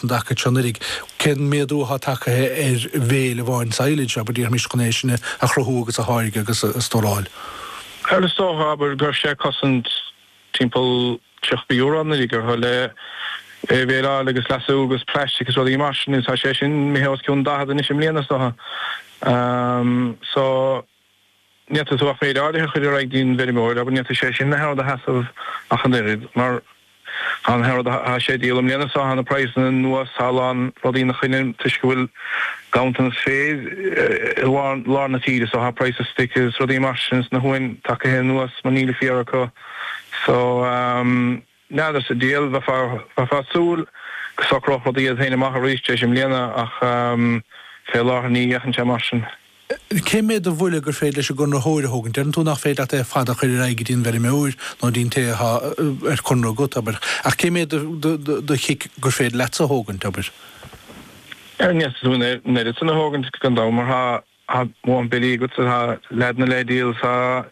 an dtaca seo anuraidh, cén méadú atá tagtha ar bhale amháin silage, abair, déarfaimis, chun é sin a chruthú agus a tháirgeadh agus a stóráil? Bhuel, is dócha, abair, go raibh sé ag cosaint timpeall €30 anuraidh chun é a bhaleáil agus leasú agus plaistic is rudaí mar sin agus tá sé sin imithe os cionn 40 anois i mbliana is dócha. So. ní fhéadfaidh tú ach méid áirithe a chur ar aghaidh don bhfeirmeoir, abair, ní fhéadfadh sé sin na haon rud a sheasamh ach an oiread, mar tá na haon rud atá sé a dhíol i mbliana so, tá na praghsanna anuas ar a lán rudaí ina choinne toisc go bhfuil ganntanas féir i lár na tíre so tá praghas stoic is rudaí mar sin is na huain tagaithe anuas mar níl an féar acu so. N'fheadar sa diabhal, bheifeá ag súil go socródh rudaí iad féin amach arís tar éis i mbliana ach fé láthair ní fhéachann sé mar sin. Cén méid de bhuille gur féidir leis an gconraitheoir a thógaint? Deireann tú nach féidir leat é ar fad a chur ar aghaidh go dtí an bhfeirmeoir nó dtí an té atá ar conradh agat, abair, ach cén méid de chic gur féidir leatsa a thógaint, abair? Ní fhéadfaidh tú an oiread san a thógaint, gan dabht, mar tá Tá mórán billí agat tá leaideanna le díol is an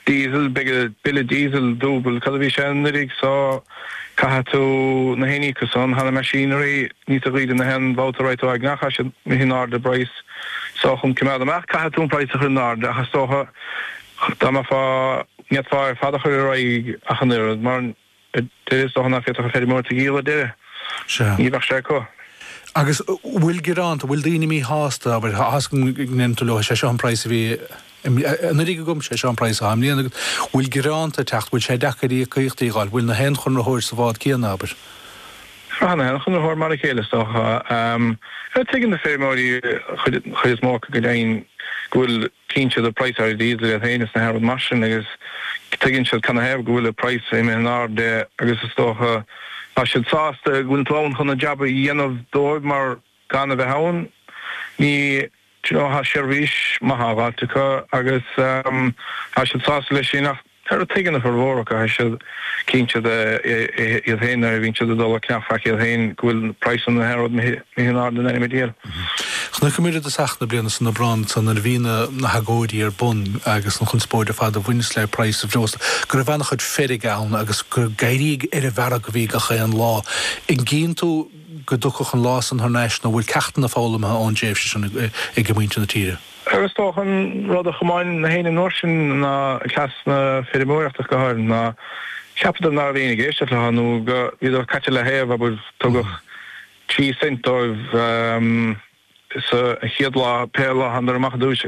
diesel beidh bille diesel dúbailt cad a bhí sé anuraidh so caithfidh tú na haon íoc as san tá na machinery níos daoire na haon bhabhta a raghaidh tú ag ceannach as sin na haon airde breis so chun coimeád amach caithfidh tú an praghas a chur in airde ach is dócha dá mbeifeá n'fhéadfá é ar fad a chur ar aghaidh ach an oiread mar Deireadh is dócha nach bhféadfadh an feirmeoir tú a dhíol ar deireadh. Sea. Ní bheadh sé acu. Agus an bhfuil gearánta, an bhfuil daoine míshásta, abair, toisc go ndeireann tú leo, sé seo an praghas a bhí anuraidh agam, sé seo an praghas atá i mbliana agat. An bhfuil gearánta ag teacht, an bhfuil sé deacair íocaíochtaí a fháil, an bhfuil na haon chonraitheoir sa bhád céanna, abair? Tá na haon chonraitheoir mar a chéile is dócha. Tuigeann na feirmeoirí, an chuid is mó acu, go deimhin, go bhfuil. Cíonn siad an praghas ar diesel iad féin is na haon rud mar sin agus tuigeann siad cad 'na thaobh go bhfuil an praghas imithe in airde agus is dócha tá siad sásta go bhfuil tú ann chun an jab a dhéanamh dóibh mar gan a bheith ann ní do you know thá seirbhís maith á dh'fháilt acu agus tá siad sásta leis sin ach Tar a tuigeann a furmhór acu, tá siad cíonn siad é iad féin nuair a bhíonn siad ag dul ag ceannach iad féin go bhfuil praghas na haon rud imithe in airde in ainm an diabhail. Chonaiceamar é i dtosach na bliana san Aibreán ansan nuair a bhí na na hagóidí ar bun agus an chonspóid ar fad a bhaineas le praghas an bhreosla go raibh an-chuid feirge ann agus gur ag géarú ar an bhfearg a bhí gach aon lá. An gcíonn tú go dtiocfadh an lá san thar n-ais nó an bhfuil ceachtanna foghlamtha ón dtréimhse sin ag muintir na tíre? Agus is dócha an rud a chomáin na héinne an uair sin ná cleas na feirmeoireachta, go háirid, ná ceapadar ná raibh éinne ag éisteacht leo nó go mbíodar caite i leataoibh, abair, tugadh trí cent dóibh sa chéad lá, pé lá a thánadar amach ar dtúis,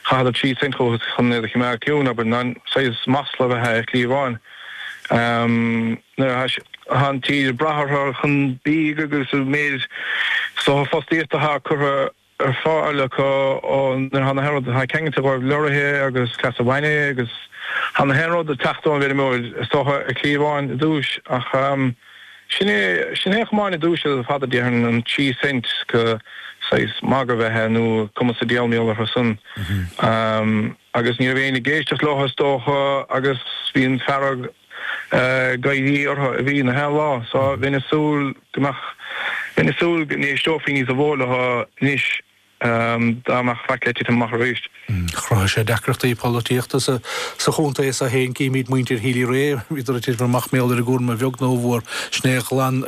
chaitheadar trí cent chucu chun iad a choimeád ciúin, abair, ná saghas masla ab ea é a chliabháin. Nuair atá an tír ag brath orthu chun bídh agus an méid is dócha fostaíochta atá curtha. ar fáil acu nuair atá na haon rud atá ceangailte dhóibh leoraithe agus cleas an bhainne agus tá na haon rud ag teacht ón bhfeirmeoir is dócha a chliabháin i dtús ach sin é sin é a chomáin i dtús ar fad a déarfainn an trí cent go saghas magadh ab ea é nó cumas a déal méal orthu san agus ní raibh éinne ag éisteacht leo is dócha agus bhí an fearg Ag éirí orthu a bhí na haon lá so. Bheinn ag súil go mbeadh, bheinn ag súil go n-éisteofaí níosa mhó leo anois dá mbeadh faic le titim amach arís. Chruthaigh sé deacrachtaí polaitíochta sa chontae so féin, címid, muintir Healy-Rae, iad ag titim amach, mar gheall ar an gcúram a bheag nó a mhór sin é a ghlan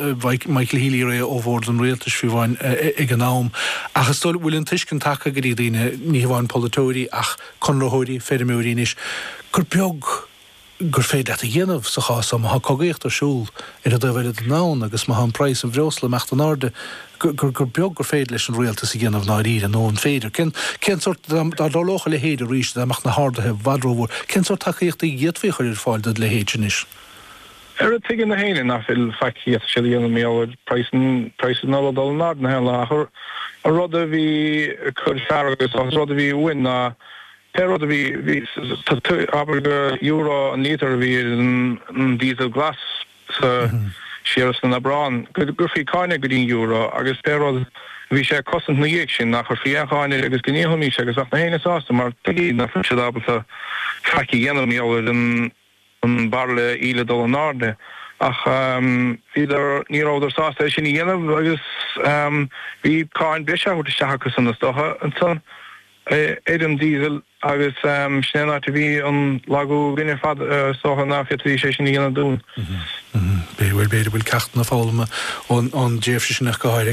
Michael Healy-Rae ó bhord an rialtais faoi bhun ag an am. Ach is dóigh go bhfuil an tuiscint tagtha go dtí daoine, ní hamháin polaiteoirí ach conraitheoirí, feirmeoirí anois, gur beag, gur féidir leat a dhéanamh sa chás seo, má tá cogaíocht ar siúl ar an dtaobh eile den domhan agus má tá an praghas an bhreosla ag imeacht in airde, gur, gur, gur beag gur féidir leis an rialtas a dhéanamh i ndáiríre, nó an féidir? Cén, cén sórt, dá, dá dtarlódh a leithéid arís, dá mbeadh na harduithe i bhfad rómhór, cén sórt tacaíochta a d'fhéadfaí a chur ar fáil don leithéid anois? Arú, tuigeann na héinne nach bhfuil faic acu siúd a dhéanamh mar gheall ar praghas an, praghas an ola dul in airde na haon áit ach an rud a bhí ag cur fearg agus, agus an rud a bhí uainn ná, Pé rud a bhí, abair gur euro an lítear a bhí ar an díosal glas sa siar san Aibreán, go gcuirfí cáin air go dtí an euro agus pé rud a bhí sé ag cosaint ina dhiaidh sin, nach gcuirfí aon cháin air agus go ndíolfaimís é agus bheadh na héinne sásta mar tuigeadh nach raibh siad ábalta faic a dhéanamh mar gheall ar an an bairille íle dul in airde ach bhíodar ní rabhadar sásta é sin a dhéanamh agus bhí cáin breise á thabhairt isteach acusan na stoca ansan ar an diesel agus sin é an áit a bhí an lagú againne ar fad is dócha ná féadfaidís é sin a dhéanamh dúinn. Bhuel b'fhéidir go bhfuil ceachtanna foghlamtha ón tréimhse sin acu go háirithe.